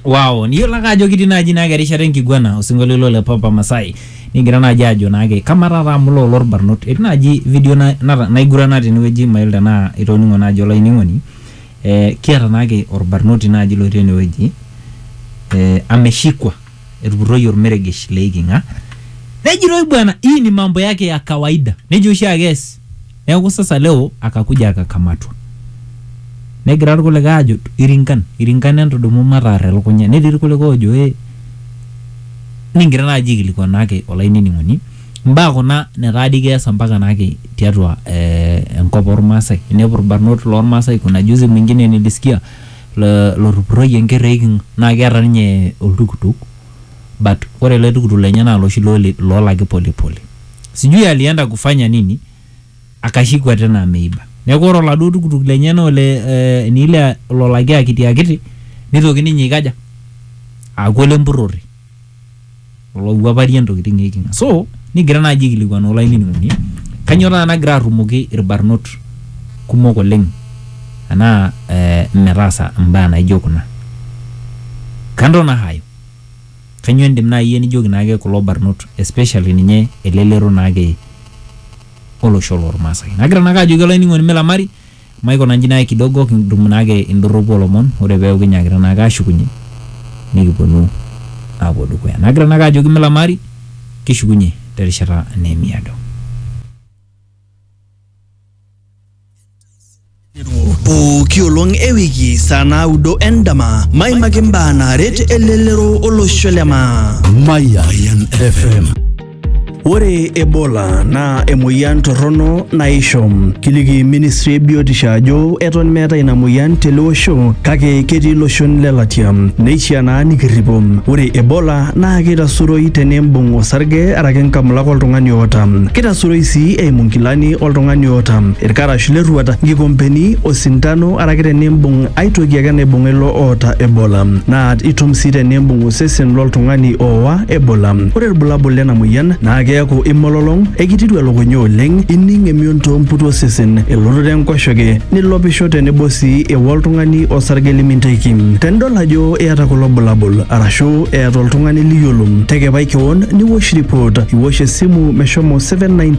Wow, niyiolo ake ajo kitii naaji naake erishata enkiguana osinkolio ilo le Papa Masai nigira naaji ajo naake kamaa taata amu loo lorbarnot etii naaji video na- nata- naigurana tenewueji mayiolo tenaa itoning'o naaji olainining'oni eh, kiata naake orbarnoti naaji lotii enewueji eh, ameshikwa etupurroyie ormeregesh leiking'a nejitoi bwana hii ni mambo yake ya kawaida nejo oshiake ees Neaku sasa leo akakuja akakamatwa. Negira irkulikae aajo irinkan, irinkan entudumu mataar elukunya. Netii irkulikae oojo ee nikigira naaji aikilikuan naake olainining'oni imbaa kuna netaa dii keesa mpaka naake tiatua eh, enkop ormaasai. Inepu irbarnot lormaasai kuna juzi mwingine nilisikia lotupuroyie enker eeking'a naa keeta ninye oltukutuk but ore ele tukutuk lenye naa loshi loolaki pole pole. sijui alienda kufanya nini akashikwa tena ameiba neeku ore oladuo tukutuk lenye naa ole eh, ni ile lolaki akiti akiti nitoki ninye aikaja aaku ole mpurrori olowuaparie ntokitin eiking'a so nigira naaji aikilikuan olainining'oni kanyoo taata nagira arrumoki irbarnot kumok oleng anaa eh, metaasa imbaa naijo kuna kando na hayo Kanyoo indim naa iyie nijoki naake kulo barnot especially ninye elelero naake olosho lormaasai. Nagira naake ajoki olainining'oni milamari maikuna nji naake kidogo kitum naake indorropu olomon ore peaku kinyaakita naake ashukunye nikipuonu aapuo dukuya. Nagira naake ajoki milamari kishukunye terishata neemiado. pooki olong e wiki saa naudo endama maimaki imbaa naaret elelero olosho le maa Mayan FM. Ore Ebola naa emoyian torrono naisho. Kiliki ministry e biotisho ajo eton meeta ina moyian tele osho kake ketii iloshon le latia. Neishaa naa nikirripo. Ore Ebola naa keitasuroi tenimbung osarge araki nkamulak oltung'ani oota. Keitasuroi sii eimu nkilani oltung'ani oota ilkarash lerruata, nkikompeni, osintano araki tenimbung ai toki ake naibung'a ilo oota Ebola. Naa itum sii tenimbung osesen loltung'ani oowa Ebola. Ore ilbulabul lena moyian naa keaku imololong, ekitiru elukunya oleng, ining emion too mputu osesen, elototo enkoshoke, nilopisho tenebo sii ewa oltung'ani osarge liminteki. Tenidol ajo iyata kulo bulabul arashu eeta oltung'ani liyiolo, tekepai kewon niwosh ripot, iwosh esimu meshomo 719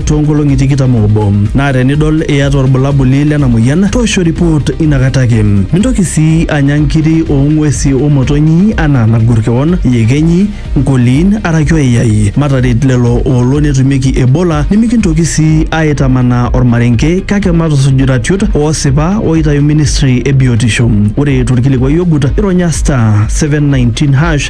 toonkolong'i tikitam oobo naa tenidol iyata olbulabuli lena moyian toosho report inakata ake. Mintoki sii anya nkiri oo ng'uesi o motonyi anaa nagor kewon, iyekenyi, nkoliin araki oyai. Mataret lelo oolo netumieki Ebola nimikintoki sii aaitamanaa olmarenke kake matusuj iratiot oosipa ooitayu ministry e biotisho. Ore tolkilikuai ogut ironya star, 719#.